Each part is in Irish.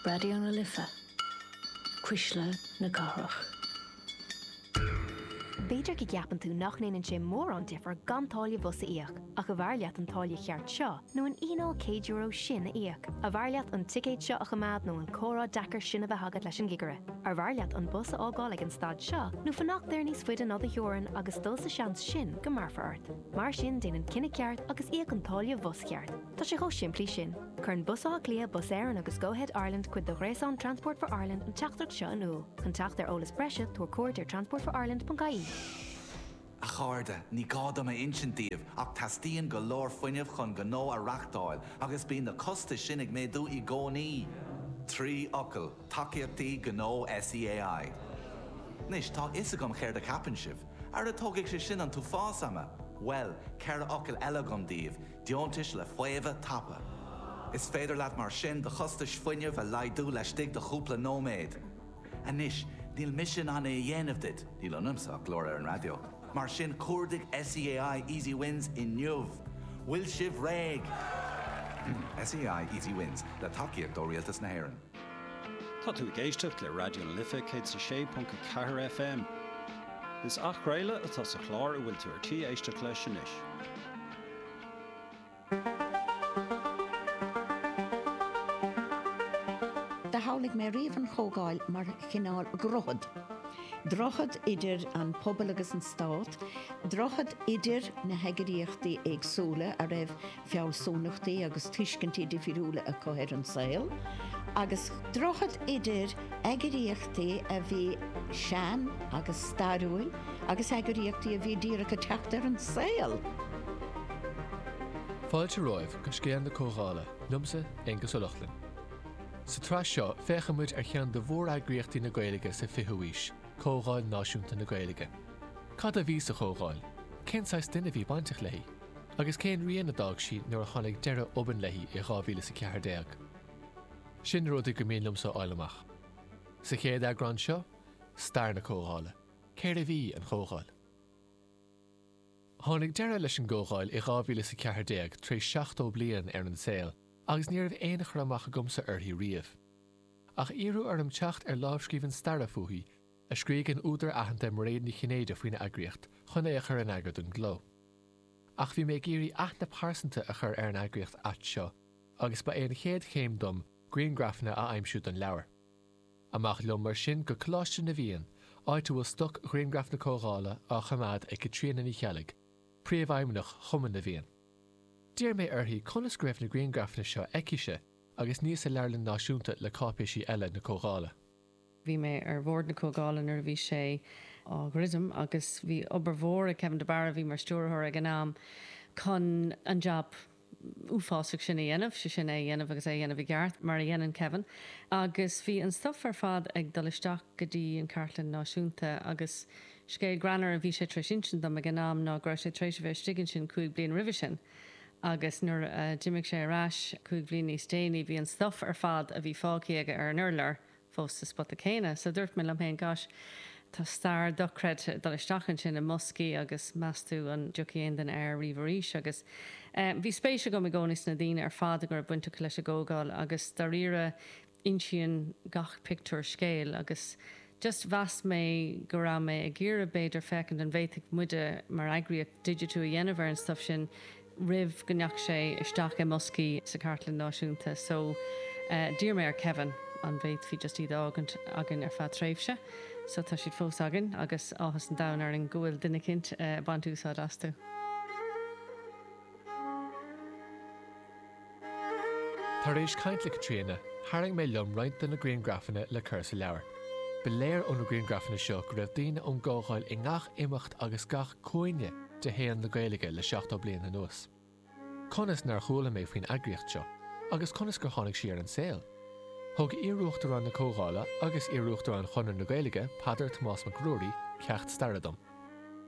Raidió na Life, Cuisle na Cathrach. B'fhéidir go gceapann tú nach ndéanann sé mórán difear gan táille bhus a íoc, ach arbh fhearr leat an táille cheart seo nó an fhíneáil €100 sin a íoc? Arbh fhearr leat an ticéad seo a choimeád nó an comhrá deacair sin a bheith agat leis an gcigire? Arbh fhearr leat an bus a fhágáil ag an stad seo nó fanacht air níos faide ná do theorainn agus dul sa seans sin go mbéarfar ort? Mar sin déan an cinneadh ceart agus íoc an táille bhus cheart. Tá sé chomh simplí sin. Cuireann Bus Átha Cliath, Bus Éireann agus Go-Ahead Ireland, cuid de ghréasán Transport for Ireland, an teachtaireacht seo in iúl. Chun teacht ar eolas breise, tabhair cuairt ar transportforireland.ie. A chairde, ní gá dom a insint daoibh ach teastaíonn go leor fuinnimh chun gnó a reáchtáil agus bíonn na costais sin ag méadú i gcónaí! Trí fhocal, Tacaíochtaí Gnó SEAI. Anois, tá a fhios agam céard a cheapann sibh. Ara tógfaidh sé sin an t-uafás ama! Bhuel, ceithre fhocal eile agam díbh, Deontais le faomhadh tapa. Is féidir leat mar sin do chostais fuinnimh a laghdú laistigh de chúpla nóiméad. Anois, níl mise in ann é a dhéanamh duit, níl ionamsa ach glór ar an raidió, mar sin cuardaigh SEAI Easy Wins inniu! Bhfuil sibh réidh? SEAI Easy Wins, le tacaíocht ó Rialtas na hÉireann. Tá tú ag éisteacht le Raidió na Life 106.4 FM. Is athchraoladh atá sa chlár a bhfuil tú ar tí éisteacht leis anois. Do shamhlaigh mé riamh an Chomhdháil mar chineál droichead. Droichead idir an pobal agus an stát, droichead idir na heagraíochtaí éagsúla a raibh fealsúnachtaí agus tuiscintí difiriúla acu ar an saol agus droichead idir eagraíochtaí a bhí sean agus stairiúil agus eagraíochtaí a bhí díreach ag teacht ar an saol. Fáilte romhaibh go Scéal na Comhdhála, liomsa Aonghus Ó Lochlainn. Sa tsraith seo féachann muid ar cheann de mhóreagraíochtaí na Gaeilge sa 20ú haois, Comhdháil Náisiúnta na Gaeilge. Cad a bhí sa Chomhdháil? Cén saghas duine a bhí bainteach léi? Agus cén rian a d'fhág sí nuair a tháinig deireadh obann léi i 2014? Sin rud gur mian liomsa a fháil amach. Sa chéad eagrán seo, stair na Comhdhála. Céard ab í an Chomhdháil? Tháinig deireadh leis an gComhdháil i 2014 tar éis 70 bliain ar an saol agus ní raibh aon chur amach agamsa uirthi riamh. Ach iarradh orm teacht ar lámhscríbhinn staire fúithi a scríobh an údar aitheanta Mairéad Ní Chinnéide faoin eagraíocht chun é a chur in eagar don gcló. ach bhí mé ag iarraidh aithne pearsanta a chur ar an eagraíocht ait seo agus ba é an chéad chéim dom grianghrafanna a aimsiú don leabhar. Amach liom mar sin go Coláiste na bhFiann, áit a bhfuil stoc ghrianghrafanna na Comhdhála á choimeád ag Caitríona Ní Cheallaigh, príomhfheidhmeannach Chumann na bhFiann. D'fhiafraigh mé uirthi conas go raibh na grianghrafanna seo aicise agus ní sa Leabharlann Náisiúnta le cáipéisí eile na Comhdhála. Bhí mé ar Bhord na Comhdhála nuair a bhí sé á dhruidim agus bhí obair mhór ag Kevin De Barra, a bhí mar stiúrthóir ag an am, chun an jab uafásach sin a dhéanamh, sé sin é a dhéanamh agus é a dhéanamh i gceart, mar a dhéanann Kevin. Agus bhí an stuif ar fad ag dul isteach go dtí an Chartlann Náisiúnta agus scéal greannmhar a bhí sé tar éis insint dom ag an am ná go raibh sé tar éis a bheith istigh ansin cúig bliana roimhe sin. agus nuair a d'imigh sé ar ais cúig bhliain níos déanaí bhí an stuif ar fad a bhí fágtha aige ar an urlár fós sa spota céanna. So dúirt mé liom féin, gosh, tá stair dochreidte ag dul isteach ansin i mboscaí agus meas tú an dtiocfaidh aon duine air riamh arís? Agus bhí spéis agam i gcónaí sna daoine ar fad a raibh baint acu leis an gComhdháil agus dáiríre, insíonn gach pictiúr scéal agus just mheas mé go raibh mé ag iarraidh b'fhéidir féachaint an bhféadfadh muide mar eagraíocht digitiú a dhéanamh ar an stuif sin roimh go ndeach sé isteach i mboscaí sa Chartlann Náisiúnta so d'iarr mé ar Kevin an bhféadfaí just iad a fhágaint againn ar feadh tréimhse so tá siad fós againn agus áthas an domhain orainn go bhfuil duine eicínt ag baint úsáid astu. Tar éis caint le Caitríona, tharraing mé liom roinnt de na grianghrafanna le cur sa leabhar. Ba léir ó na grianghrafanna seo go raibh daoine ón gComhdháil i ngach imeacht agus gach cúinne de shaol na Gaeilge le seachtó bliain anuas. Conas nár chuala mé faoin eagraíocht seo? Agus conas gur tháinig sí ar an saol? Thug iaruachtarán na Comhdhála agus iaruachtarán Chonradh na Gaeilge, Peadar Tomás Mac Ruairí, ceacht staire dom.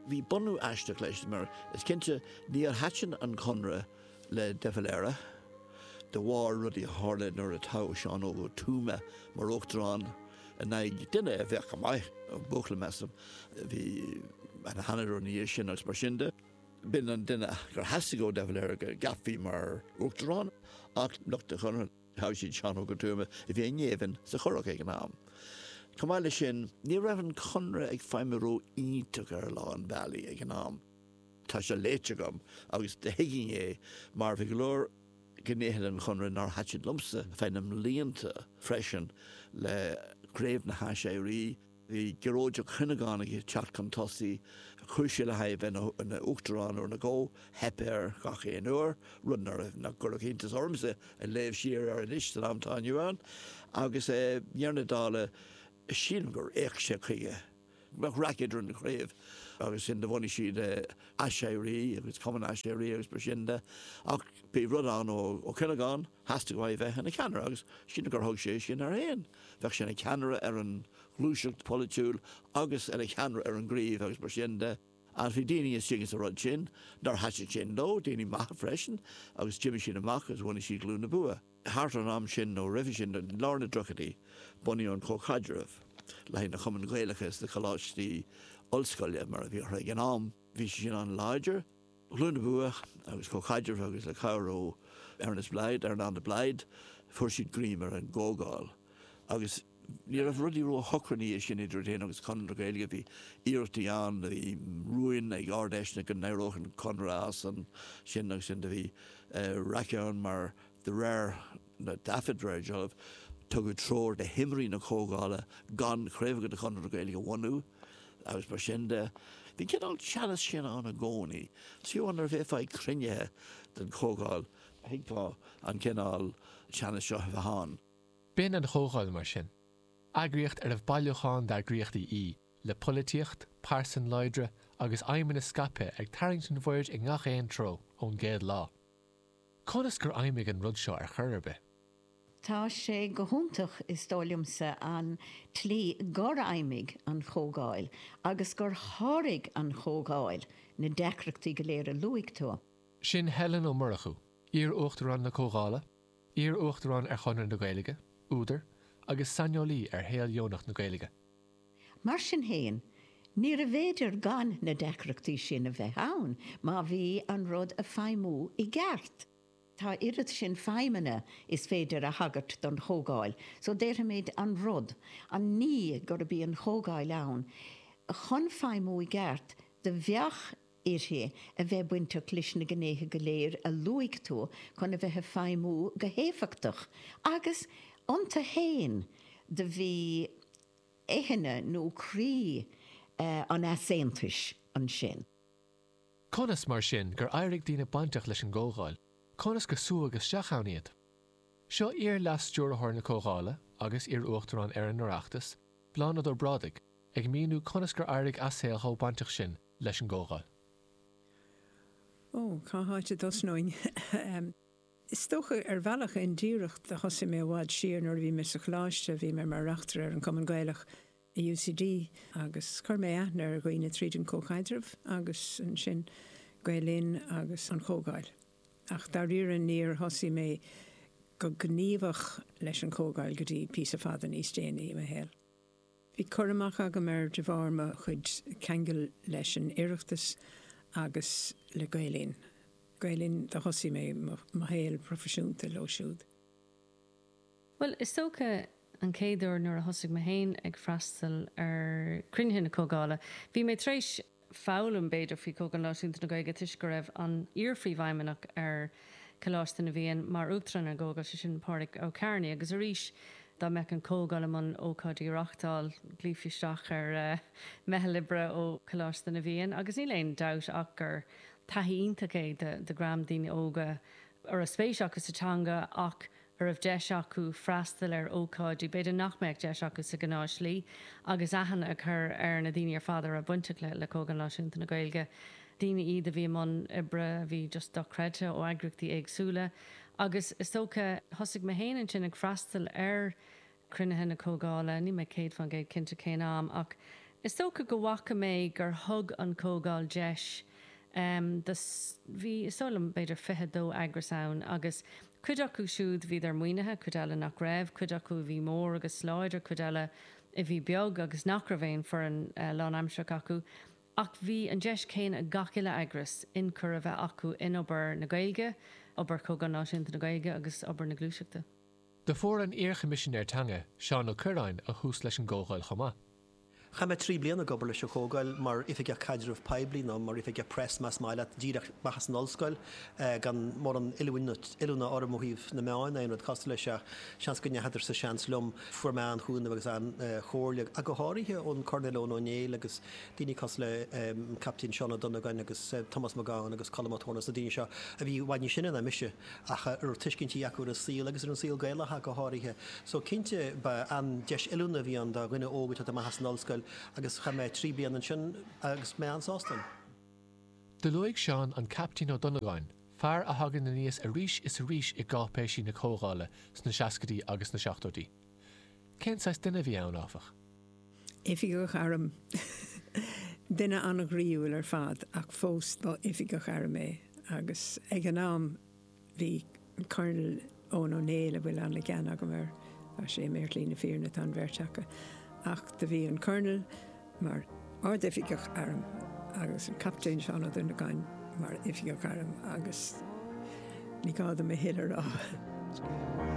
Bhí bunú aisteach leis, mar is cinnte níor thaitin an Conradh le De Valera. De bharr rudaí a tharla nuair a toghadh Seán Óg Ó Tuama mar Uachtarán in aghaidh, duine a bheadh go maith, Ó Buachalla measaim, a bhí ina Sheanadóir ina dhiaidh sin agus mar sin de, b'in an duine gur theastaigh ó De Valera go gceapfaí mar Uachtarán ach lucht an Chonartha, thogh siad Seán Óg Ó Tuama a bhí i ngéibheann sa Churrach ag an am. Chomh maith leis sin, ní raibh an Conradh ag feidhmiú ró iontach ar a lán bealaí ag an am. Tá sé léite agam agus do thuigfinn é mar bhí go leor gnéithe den Chonradh nár thaitin liomsa feadh na mblianta freisin le Craobh na hAiséirí, bhí Gearóid Ó Cuinneagáin ag teacht chun tosaigh, chuaigh sé le haghaidh a bheith ina Uachtarán uair nó dhó, theip air gach aon uair, rud nach gcuirfeadh iontas ormsa ag léamh siar air anois san am atá inniu ann, agus i ndeireadh na dála sílim gur fhéach sé chuige, Bhíodh raic idir an chraobh agus sin de bhunaigh siad Aiséirí agus Cumann Aiséirí agus mar sin de ach bhí rud ann Ó Cuinneagáin theastaigh uaidh bheith ina cheannaire agus sin é gur thug sé sin air fhéin. Bheadh sé ina cheannaire ar an ghluaiseacht pholaitiúil agus ina cheannaire ar an gcraobh agus mar sin de ach bhí daoine istigh sa rud sin nár thaitin sin leo, daoine maithe freisin agus d'imigh siad amach agus bhunaigh siad Glún na Bua. Thart ar an am sin nó roimhe sin, i lár na dtríochaidí, bunaíodh an Comhchaidreamh le haghaidh na Cumainn Ghaelacha sna coláistí ollscoile, mar a bhí orthu ag an am. Bhí siad sin an-láidir, Glúin na Bua agus Comhchaidreamh agus le cabhair ó Ernest Blythe, Earnán de Blaghd, fuair siad greim ar an gComhdháil agus, Ní raibh rudaí ró shocair ina dhiaidh sin idir é féin agus Conradh na Gaeilge. Bhí iarrachtaí ann, bhí rúin ag Ard Fheiseanna go n-éireodh an Conradh as an sin agus sin de. Bhí raic ann mar de réir na dtaifead, de réir dealraimh, tugadh treoir do thimirí na Comhdhála gan craobhacha de Chonradh na Gaeilge a bhunú agus mar sin de. Bhí an cineál teannas sin ann i gcónaí. Fiú nuair a bheifeá ag cruinnithe den Chomhdháil thuigfeá an cineál teannas seo a bheith ann. B'in an Chomhdháil mar sin, eagraíocht arbh bailiúchán d'eagraíochtaí í, le polaitíocht, pearsain láidre agus aidhmeanna scaipthe ag tarraingt an bhoird i ngach aon treo ón gcéad lá. Conas gur fheidhmigh an rud seo ar chor ar bith? Tá sé go hiontach, is dóigh liomsa, an tslí gur fheidhmigh an Chomhdháil agus gur sháraigh an Chomhdháil na deacrachtaí go léir a luaigh tú. Sin Helen Ó Murchú, iar-Uachtarán na Comhdhála. Iar-Uachtarán ar Chonradh na Gaeilge, údar, agus saineolaí ar shaol dheonach na Gaeilge. Mar sin féin, níorbh fhéidir gan na deacrachtaí sin a bheith ann má bhí an rud ag feidhmiú i gceart. Tá oiread sin feidhmeanna is féidir a thagairt don Chomhdháil so déarfaimid an rud, an ní gurb í an Chomhdháil ann chun feidhmiú i gceart do bheadh uirthi a bheith bainteach leis na gnéithe go léir a luaigh tú chun a bheith ag feidhmiú go héifeachtach agus iontu fhéin do bhí eithne nó croí an easaontais ansin. Conas mar sin gur éirigh daoine bainteach leis an gComhdháil? Conas gur súadh isteach ann iad? Seo iar leas stiúrthóir na Comhdhála agus iar Uachtarán ar an Oireachtas, Bláthnaid Ó Brádaigh, ag míniú conas gur éirigh a saol chomh bainteach sin leis an gComhdháil. Ó, cá háit a dtosnóinn? Is dócha ar bhealach indíreach a thosaigh mé i bhfad siar nuair a bhí mé sa choláiste, bhí mé mar reachtaire ar an Chumann Gaelach i UCD agus chuir mé aithne ar dhaoine tríd an Chomhchaidreamh agus ansin Gael Linn agus an Chomhdháil. Ach dáiríre níor thosaigh mé go gníomhach leis an Chomhdháil go dtí píosa fada níos déanaí i mo shaol. Bhí cur amach agam air de bharr mo chuid ceangal leis an Oireachtas agus le Gael Linn. Gael Linn do thosaigh mé mo shaol proifisiúnta leo siúd. Bhuel, is dócha an chéad uair nuair a thosaigh mé féin ag freastal ar cruinnithe na Comhdhála, bhí mé tar éis. foghlaim b'fhéidir faoi Chomhdháil Náisiúnta na Gaeilge toisc go raibh an iar-phríomhfheidhmeannach ar Coláiste na bhFiann mar uachtarán ar an gComhdháil, sé sin Pádraig Ó Cearnaigh, agus arís dá mbeadh an Comhdháil i mbun ócáidí a reachtáil, ghlaofaí isteach ar meitheal oibre ó Coláiste na bhFiann agus níl aon dabht ach gur taithí iontach é do dhream daoine óga a raibh spéis acu sa teanga ach a raibh deis acu freastal ar ócáidí, b'fhéidir nach mbeadh deis acu sa ghnáthshlí, agus aithne a chur ar na daoine ar fad a bhí bainteach le le Comhdháil Náisiúnta na Gaeilge. Daoine iad a bhí i mbun oibre a bhí just dochreidte ó eagraíochtaí éagsúla agus is dócha thosaigh mé féin ansin ag freastal ar cruinnithe na Comhdhála. Níl mé céad faoin gcéad cinnte cén am, ach is dócha go bhfaca mé gur thug an Chomhdháil deis do, bhí, is dóigh liom, b'fhéidir fiche dó eagras ann, agus cuid acu siúd bhíodar maoinithe, cuid eile nach raibh, cuid acu a bhí mór agus láidir, cuid eile a bhí beag agus nach raibh aon foireann lánaimsearach acu, ach bhí an deis céanna ag gach uile eagras inchur a bheith acu in obair na Gaeilge, obair Chomhdháil Náisiúnta na Gaeilge agus obair na Gluaiseachta. Do fuair an iar-Choimisinéir Teanga, Seán Ó Cuirreáin, a thús leis an gComhdháil chomh maith. Chaith mé trí bliana ag obair leis an Chomhdháil, mar Oifigeach Caidreamh Poiblí nó mar Oifigeach Preis más maith leat, díreach amach as an Ollscoil, gan mórán oiliúna orm ó thaobh na meáin ná aon rud cosúil leis ach seans go ndeachadar sa seans liom. Fuair mé an-chúnamh agus an-chomhairle, go háirithe ón Choirnéal Eoghan Ó Néill agus daoine cosúil le an Captaen Seán Ó Donnagáin agus Tomás Mac Gabhann agus Colm Ó Torna, na daoine seo a bhí i bhfad níos sine ná mise. ach a raibh tuiscintí acu ar an saol agus ar an saol Gaelach go háirithe. So cinnte ba an-deis oiliúna a bhí ann do dhuine óg ag teacht amach as an ollscoil agus chaith mé trí bliana ansin agus mé an-sásta. Do luaigh Seán an Caiptín Ó Donnagáin, fear a thagann aníos arís is arís i gcáipéisí na Comhdhála sna seascaidí agus sna seachtóidí. Cén saghas duine a bhí ann, áfach? Oifigeach airm. Duine an-ghroíúil ar fad ach fós ba oifigeach airm é agus ag an am bhí an Cornal Eoghan Ó Néill a bhfuil an-ghean agam air, tá sé ar shlí na fírinne tá an bheirt acu, ach do bhí an Cornal mar ardoifigeach airm agus an Captaen Seán Ó Donnagáin mar oifigeach airm agus ní gá dom a thuilleadh a rá.